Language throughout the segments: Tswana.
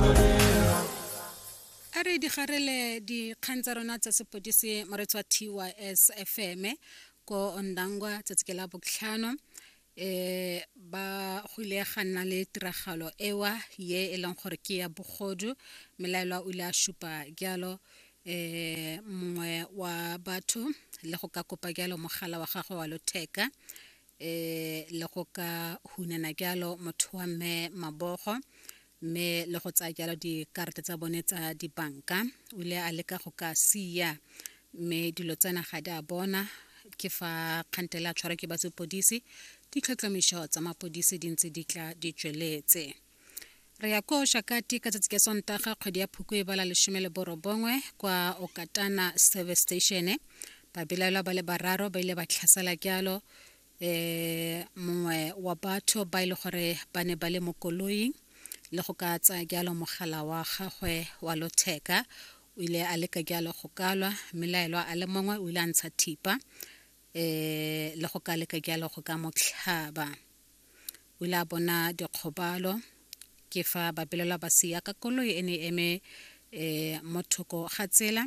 a re digarele dikgang tsa rona tsa sepodisi moretsi wa tys fm ko ondangwa tsatsi ke la botlhano eh ba go ile ga nna le tiragalo ewa ye e leng gore ke ya bogodu melaelwa o ile a supa jalo eh mongwe wa batho le go ka kopa jalo mogala wa gagwe wa lotheka e le go ka hunana jalo motho wa mme mabogo mme le go tsaya jalo dikarata tsa bone tsa dibanka o ile a leka go ka sia mme dilo tsena ga di a bona ke fa kgantele a tshwarwa ke ba sepodisi ditlhotlhomišo tsa mapodisi di ntse di tla di tsweletse re ya ko shakati ka tsatsi ka sontaga kgwedi ya phuko e bala lesome le borobongwe kwa okatana service station babelaelwa ba le bararo ba ile ba tlhasela jalo eh mongwe wa batho ba ile e gore ba ne ba le mo koloing le go ka tsaya jalo mogala wa gagwe wa lotheka o ile a leka jalo go kalwa mmelaelwa a le mongwe o ile a ntsha thipa eh le go ka leka jalo go ka motlhaba O ile a bona dikgobalo ke fa babelelwa ba siya ka koloi e ne eme um mo thoko ga tsela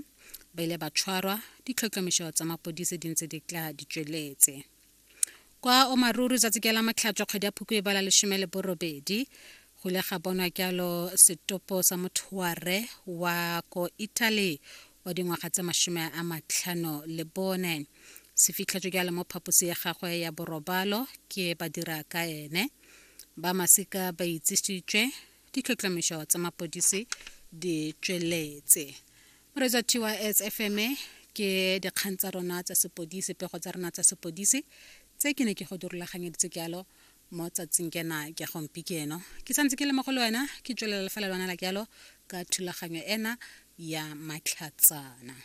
ba ile ba tshwarwa ditlhotlhomišo tsa mapodisi di ntse di tla di tsweletse kwa omaruru tsatsi ke la matlhatšwa kgwedi ya phukwe ba la lesome le borobedi go ile ga bonwa jalo setopo sa motho wa rre wa ko italy wa dingwaga tse masome a matlhano le bone se fitlhetswe jalo mo phaposi ya gagwe ya borobalo ke ba dira ka ene ba masika ba itsisitswe ditlhotlhomišo tsa mapodisi di tsweletse moretsa t wa s f m ke dikgang tsa rona tsa sepodisi pego tsa rona tsa sepodisi tse ke ne ke go dirulaganyeditse jalo mo tsatsing kena ke gompikeno ke santse ke le mo go le wena ke tswelela lefela lwana la kyalo ka thulaganyo ena ya matlhatsana